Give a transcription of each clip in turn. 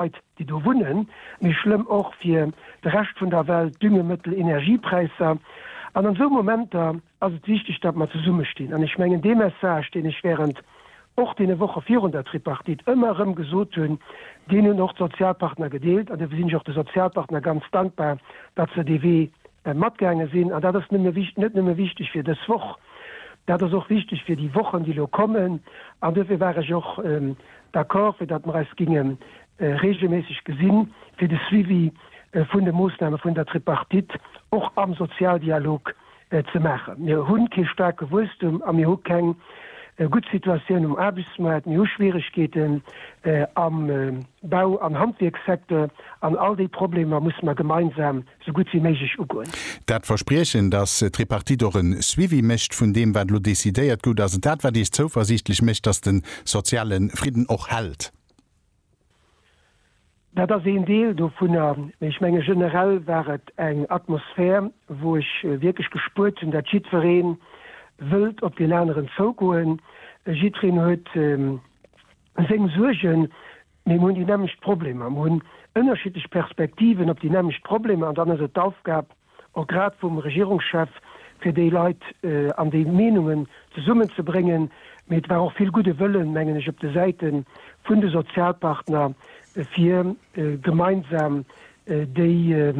Leit, déi do wunnen, méi schlëmm och fir de Rescht vun der Welt, Düngemëttel, Energiepräisser. An an esou Momenter ass et wichteg, datt mer zesummestinn. An ech mengen, dee Message, deen ech während och deene Woche virun der Tripartite ëmmer erëm gesot hunn, deen hunn och d'Sozialpartner gedeelt. An dofir sinn ech och de Sozialpartner ganz dankbar, datt se dee Wee matgaange sinn. An dat ass net nëmme wichteg fir dës Woch, dat ass och wichteg fir déi Wochen, déi elo kommen. An dofir war ech och d'accord, fir datt mer eis géinge reegelméisseg gesi fir de Suivi vun de Moossname vun der Tripartite och am Sozialdialog ze maachen. Mir hu kee staarke Wuesstum a mir hu keng gutt Situatioun um Aarbechtsmaart. Mir hu Schwieregkeeten am Bau an Handwierkssecteur. An all déi Problemer musse mer gemeinsam sou gutt wéi méiglech ugoen. Dat Verspriechen, dass d'Tripartite och e Suivi mécht vun deem, wat elo decidéiert gout, ass et dat, wat Iech zouversiichtlech mécht, dass de soziale Fridden och hält? Dat ass een Deel dovunner. Mee ech menge generell war et eng Atmosphär, wou ech wierklech gespuert hunn, dat jiddweree wëllt op deen aneren zougoen, jiddwereen huet, Seng Suergen, mee mir hunn déi nämmlecht Problemer, mir hunn ënnerschiddlech Perspektiven op déi nämmlecht Problemer, an dann ass et d'Aufgab och grad vum Regierungschef, fir déi Leit an déi Meenungen zesummenzebréngen. Mee et war och vill gudde Wëllen, mengen ech, op de Säite vun de Sozialpartner, fir gemeinsam déi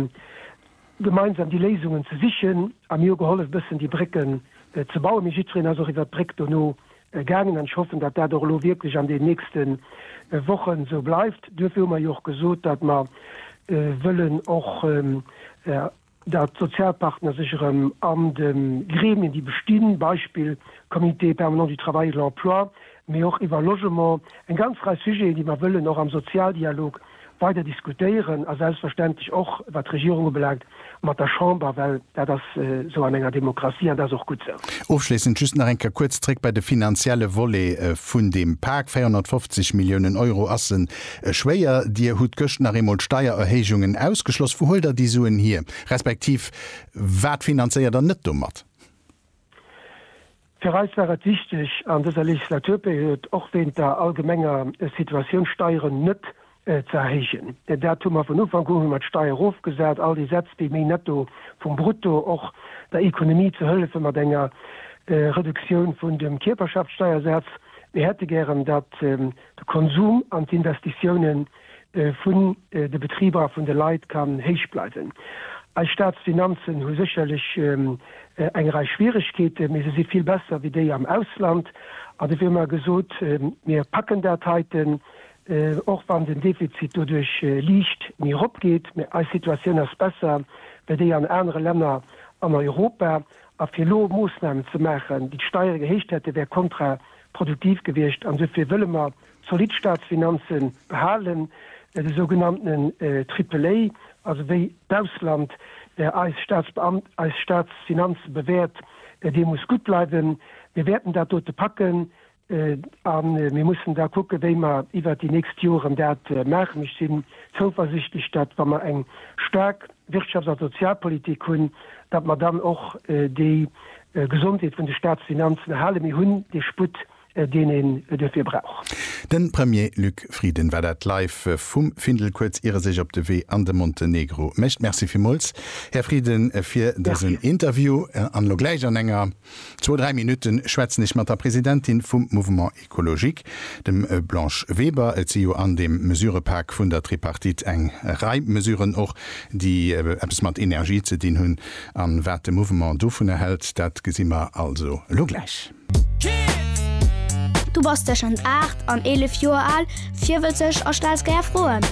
gemeinsam déi Léisungen ze sichen. A mir hu gehollef, e bëssen déi Brécken ze bauen, mee jiddwereen ass och iwwert d'Bréck dono Gaangen an ech hoffen, datt dat och elo wierklech an den nächste Wochen esou bleift. Duerfir hu mer jo och gesot, datt mer wëllen och, datt d'Sozialpartner sech erëm an de Gremien, déi bestinn, Beispill Comité permanent du travail et de l'emploi, mee och iwwer Logement, eng ganz Rei Sujeten, déi mer wëllen och am Sozialdialog weider diskutéieren a selbstverständlech och, wat d'Regierung ubelaangt, mat der Chamber, well dat ass esou an enger Demokratie an dat ass och gutt esou. Ofschléissend just nach eng Kéier kuerz zréck bei de finanzielle Volet vun deem Pak. 450 Milliounen Euro ass e schwéier. Dir hutt gëscht nach eemol d'Steiererhéijungen ausgeschloss. Wou huelt Der déi Suen hier, respektiv wat finanzéiert Der net domat? Fir eis war et wichteg an dëser Legislaturperiod, och wéint der allgemenger Situatioun, d'Steieren net ze erhéijen. Dat hu mer vun Ufank un, hu mer d'Steier erofgesat, all déi Sätz, déi méi Netto vum Brutto, och der Ekonomie ze hëllefen mat enger Reduktioun vun dem Kierperschaftssteiersaz. Mir hätte gären, datt de Konsum an d'Investitioune vun de Betriber a vun de Leit kann héich bleiwen. Eis Staatsfinanzen hu sécherlech eng Rei Schwieregkeete, mee se si vill besser wéi déi am Ausland. An dofir hu mer gesot, mir packen dat heiten, och wann den Defizit doduerch liicht méi eropgeet. Mee eis Situatioun ass besser wéi déi an anere Länner an Europa. A fir elo Moossnamen ze maachen, déi d'Steiere gehéicht hätten, wär kontraproduktiv gewiescht. An dofir wëlle mer zolidd Staatsfinanze behalen, de sougenannten Triple-A, also wéi d'Ausland eis Staatsbeamten, eis Staatsfinanze bewäert, dee muss gutt bleiwen. Mir wäerten dat dote packen. A mir mussen da kucken, wéi mer iwwert déi nächst Joren dat maachen. Ech sinn zouversichtlech, datt, wa mer eng staark Wirtschafts a Sozialpolitik hunn, datt mer dann och déi Gesondheet vun de Staatsfinanzen erhalen. Mir hunn dee Sputt, deen een duerfir brauch. De Premier Luc Frieden war dat live vum Findel kuerz ier e sech op de Wee an de Montenegro mécht. Merci villmools, Här Frieden, fir dësen Interview. An elo gläich an enger. Zwou, dräi Minutte schwätzen ech mat der Presidentin vum Mouvement Ecologique, dem Blanche Weber. Et si jo an deem Mesurëpak vun der Tripartite eng Rei Mesuren och, déi eppes mat Energie ze dinn hunn. An wat de Mouvement dovunner hält, dat gesi mer also elo gläich. Du bass tëschent 8 an 11 Joer al. Virwëtzeg a stells gär Froen?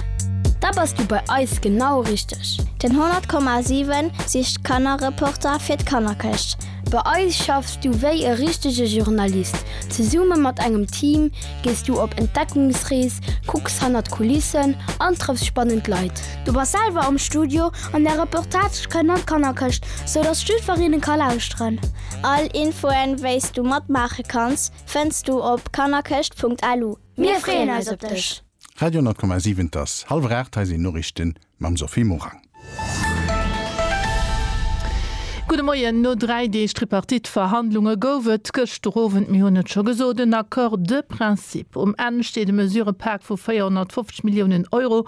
Da bass du bei eis genau richteg! Den 100,7 sicht Kannerreporter fir d'Kannerkëscht. Bei eis schaffs du wéi e richtege Journalist. Zesumme mat engem Team gees du op Entdeckungsrees, kucks hanner d'Kulissen an trëffs spannend Leit. Du bass selwer am Studio an där Reportage kënnt an d'Kannerkëscht, sou dass jiddwer een e ka lauschteren. All Infoen, wéi s du matmaache kanns, fënns du op kannerkëscht.lu. Mir freeën eis op dech! Radio 10,7 Et ass hallwer 8, hei sinn d'Noriichte mam Sophie Morang. Gudde Moien. No dräi Deeg Tripartite-Verhandlunge gouf et gëschter Owend, mir hunn et scho gesot, en Accord de principe. Um Enn steet e Mesurëpak vu 450 Milliounen Euro,